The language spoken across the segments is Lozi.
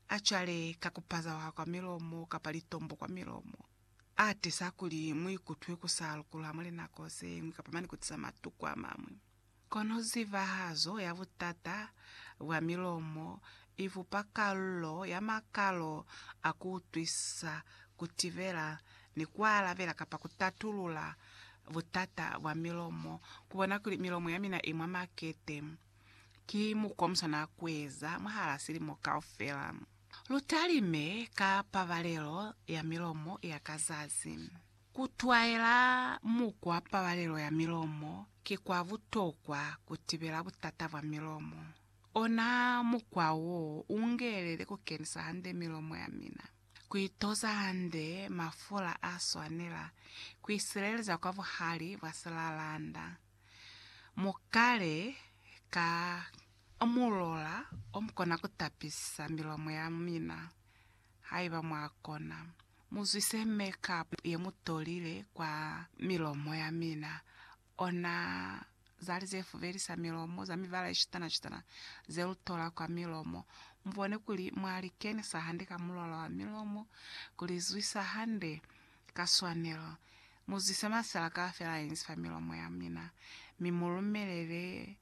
A cwale ka ku pazaha kwa milomo kapa litombo kwa milomo. A tiza kuli mu ikutwe ku sa lukulwa mwa linako ze ñwi kapa mane ku tiza matuku a mañwi. Kono zibahazo ya butata bwa milomo i bupa kalulo ya makalo a ku utwisisa, ku tibela, ni ku alabela kapa ku tatulula butata bwa milomo. Ku bona kuli milomo ya mina i mwa makete. Ki mukwa muswana kueza mwahala silimo kaufela. Lutalime ka pabalelo ya milomo ya ka zazi. Kutwaela mukwa pabalelo ya milomo ki kwa butokwa kutibela butata bwa milomo. Ona mukwa wo ungelele kukenisa hande milomo yamina, kuitoza hande mafula aswanela, kuisileleza kwa buhali bwa silalanda. Mu kale ka mulola o mu kona ku tapisa milomo ya mina. Haiba mwa kona, mu zwise make-up ye mu tolile kwa milomo ya mina, ona zali ze fubelisa milomo za mibala ye citana-citana ze lu tola kwa milomo. Mu bone kuli mwa li kenisa hande ka mulola wa milomo, ku li zwisa hande. Ka swanelo, mu zise masala kaufela inzi fa milomo ya mina, mi mu lumelele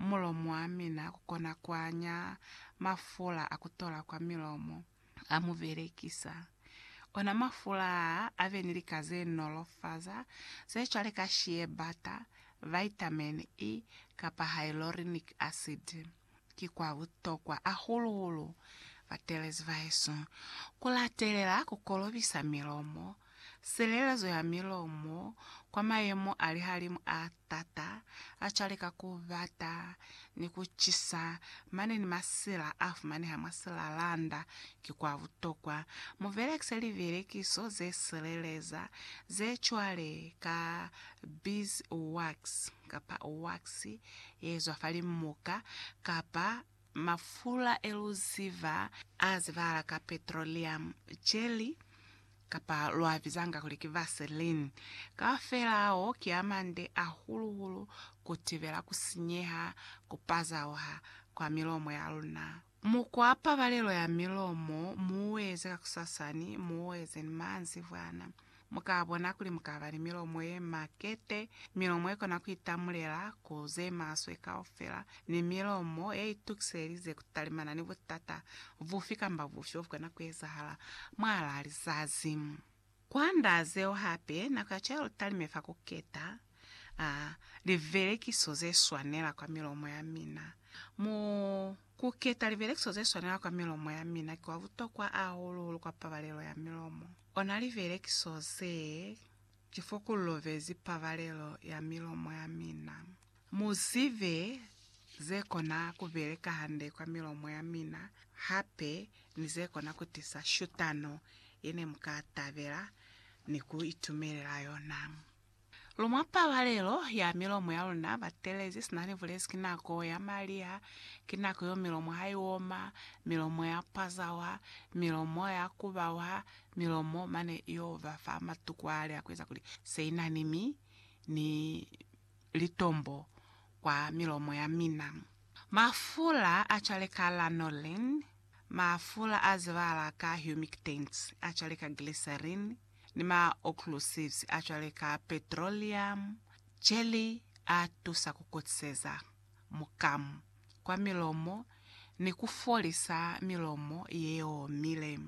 mulomo wa mina ku kona ku anya mafula a ku tola kwa milomo a mu belekisa. Ona mafula a a be ni lika ze nolofaza ze cwale ka shea butter, vitamin E, kapa hyaluronic acid. ki kwa butokwa hahulu-hulu batelezi bahesu ku latelela ku kolobisa milomo, silelezo ya milomo kwa mayemo a lihalimu a t'ata a cwale ka ku bata ni ku cisa mane ni masila a fumaneha mwa silalanda. Ki kwa butokwa mu belekise libelekiso ze sileleza ze cwale ka beeswax. kapa waksi yeezwa fa limuka, kapa mafula eluziba azibahala ka petroleum jelly, kapa luabizanga kuli ki vaseline, kaufela ao ki amande ahulu-hulu kutibela kusinyeha, kupazauha, kwa milomo yaluna. Mukwa pabalelo ya milomo muueze kakusasani, muueze ni maanzibwana. Mukabona kuli mukaba ni milomo yemakete, milomo yekona kuitamulela ku zemaswe kaufela, ni milomo yeitukiselelize kutalimana ni butata bufi kamba bufi bobukona kuezahala mwaalaa lizazi. Kwand'a zeo hape, nako ya Jerutaleme fa ku keta a livelekiso ze swanela kwa milomo ya mina. Mu ku keta livelekiso ze swanela kwa milomo ya mina ki kwa butokwa ahulu-hulu kwa pabalelo ya milomo. Ona livelekiso ze ki fo ku lovezi pabalelo ya milomo ya mina. Mu zibe ze kona ku beleka hande kwa milomo ya mina hape ni ze kona ku tisa shutano ye ne mu ka tabela ni ku itumelela yona. Lu mwa pabalelo ya milomo ya luna. Batelezi sina ni bulezi ki nako ya maliha, ki nako yeo milomo ha i oma, milomo ya pwazawa, milomo ya kubawa, milomo mane yo ba fa matuku a li a ku eza kuli se i na ni mi, ni litombo kwa milomo ya mina. Mafula a cwale ka lanolin, mafula a zibahala ka humectants a cwale ka glycerin, ni ma occlusives a cwale ka petroleum jelly a tusa ku kutiseza mukamu kwa milomo ni ku folisa milomo ye omile.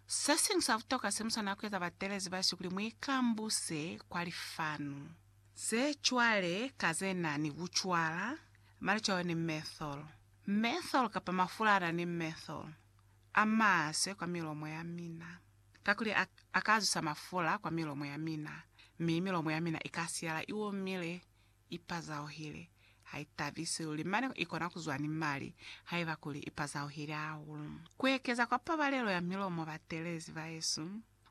Se siñwi sa butokwa se mu swanela ku eza batelezi ba Jesu kuli mu ikambuse kwa lifanu. Ze cwale ka ze na ni kucwala, malicwayo ni methyl, methyl kapa mafula a na ni methyl, a maswe kwa milomo ya mina, kakuli a, a ka zwisa mafula kwa milomo ya mina, mi milomo ya mina i ka siyala i omile, i pazauhile, ha i tabisi luli, mane i kona ku zwa ni mali, haiba kuli i pazauhile hahulu. Ku ekeza kwa pabalelo ya milomo batelezi ba yesu,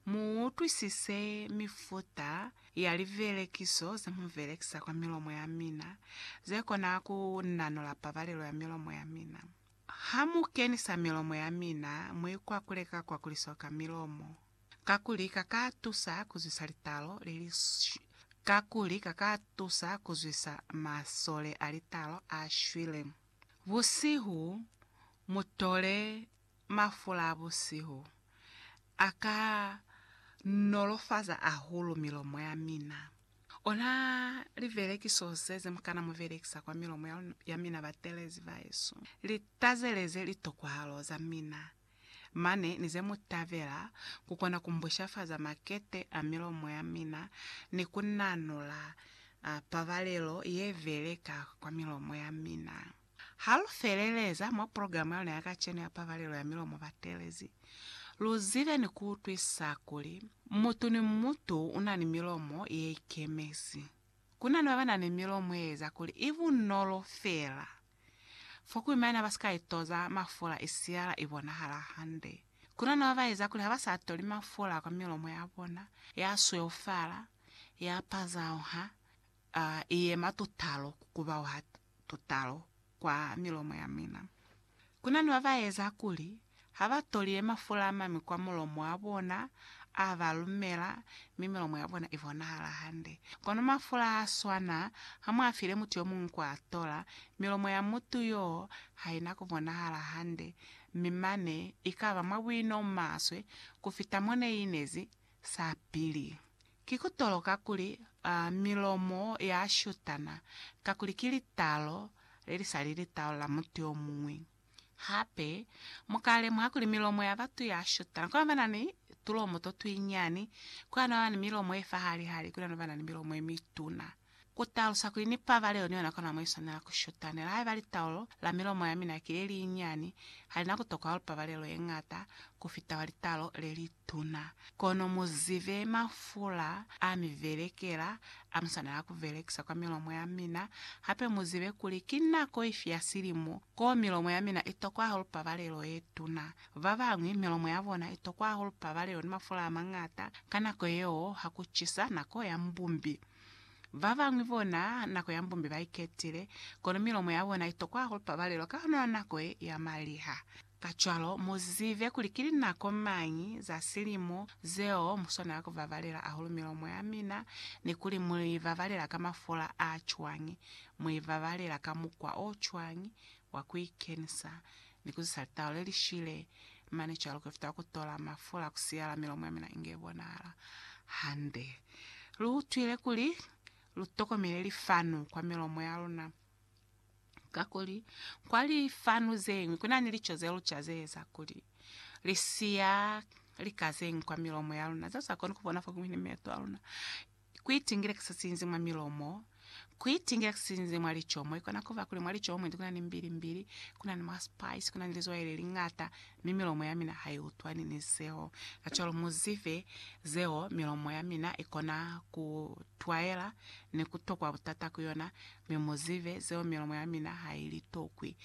Mu utwisise mifuta ya livelekiso ze mu velekisa kwa milomo ya mina ze kona ku nanula pabalelo ya milomo ya mina. Ha mu kenisa milomo ya mina, mu ikwakule ka kwakuliso ka milomo, kakuli ka ka tusa ku zwisa litalo le li kakuli ka ka tusa ku zwisa masole a litalo a shwile. Busihu, mu tole mafula a busihu a ka nolofaza hahulu milomo ya mina. Ona livelekiso ze ze mu kana mu velekisa kwa milomo ya mina batelezi ba Yesu. Li tazeleze litokahalo za mina mane ni ze mu tabela ku kona ku mbushafaza makete a milomo ya mina ni ku nanula pabalelo ye veleka kwa milomo ya mina. Ha lu feleleza mwa programa ya luna ya kacenu ya Pabalelo ya Milomo Batelezi, lu zibe ni ku utwisa kuli mutu ni mutu u na ni milomo ye ikemezi. Ku na ni ba ba na ni milomo ye eza kuli i bunolo feela fo kuli maina ba si ka itoza mafula i siyala i bonahala hande. Ku na ni ba ba eza kuli ha ba sa toli mafula kwa milomo ya bona, ya sweufala, ya pazauha, A i yema tutalo ku kubaha tutalo kwa milomo ya mina. Ku na ni ba ba eza kuli ha ba to li yema fula ama mi kwa mulomo wa bona a ba lumela mi milomo ya bona i bonahala hande. Kono mafula ha a swana, ha mu a file mutu yo muñwi ku a tola, milomo ya mutu yoo ha i na ku bonahala hande, mi mane i ka ba mwa buino o maswe ku fita mo ne i inezi sapili. Ki ku toloka kuli milomo ya shutana, kakuli ki litaalo le li sa li litaalo la mutu yo muñwi. Hape, mu ka lemuha kuli milomo ya batu ya shutana, kuna ba na ni tulomo to tuinyani, kuna ba na ni milomo ye fahali-hali, kuna ba na ni milomo ye mituna. Ku talusa kuli ni pabalelo ni yona kona mo i swanela ku shutanela. Haiba litaulo la milomo ya mina ki le li nyani, ha li na ku tokohal pabalelo ye ñata ku fita wa litaulo le li tuna. Kono mu zibe mafula a mi belekela a mu swanela ku belekisa kwa milomo ya mina. Hape mu zibe kuli ki nako ifi ya silimo koo milomo ya mina i tokwa hahulu pabalelo ye tuna. Ba bañwi milomo ya bona i tokwa hahulu pabalelo ni mafula a mañata ka nako yeo ha ku cisa, nako ya mbumbi. Babañwi bona nako ya mbumbi baiketile, kono milomo yabona itokwa hahulu pabalelo ka lona nako ye ya maliha. Kacwalo, muzibe kuli ki linako mañi za silimo zeo muswanela kubabalela hahulu milomo yamina, ni kuli muibabalela ka mafola a cwañi, muibabalela ka mukwa o cwañi wa kuikenisa, Ni ku zisa litau le li shile, mane cwalo ku fita ku tola mafula ku siyala milomo ya mina inge bonahala hande. Lu utwile kuli lu tokomele lifanu kwa milomo ya luna, kakuli kwa lifanu ze ñwi ku na ni lico ze luca ze eza kuli li siya lika ze ñwi kwa milomo ya luna zeo sa koni ku bona fo kiñwi ni meto a luna. Kuitingila kisinzi mwa milomo, Kuitingila kisinzi mwa licomo. Ikona kuba kuli mwa licomo mwendi kuna ni mbilimbili, kuna ni ma spice, kuna ni lizwai leliñata, mi milomo yamina haiutwani ni zeo. Kacwalo muzife zeo, milomo yamina ikona kutwaela ni kutokwa butata ku yona, mi muzife zeo milomo yamina hailitokwi.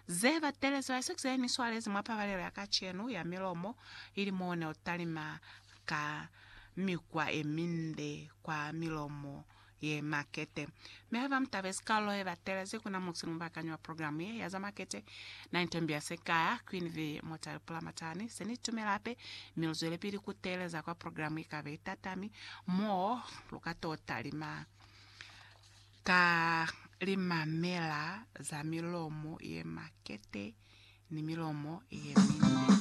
Ze batelezi ba Isaac zene ni swalezi mwa pabalelo ya kacenu ya milomo ili moo ne utalima. ka mikwa ye minde kwa milomo ye makete. Mi haiba mu tabezi kalulo ye batelezi, kuna mutu ni mubakanyi wa programu ye ya za makete, na ni tembi ya se ka ya Queen V. Motale pula matani. Se ni tumela hape, mi lu zwelepili ku teeleza kwa programu i kabe i tatami, mo lu ka to talima ka limamela za milomo ye makete ni milomo ye minde.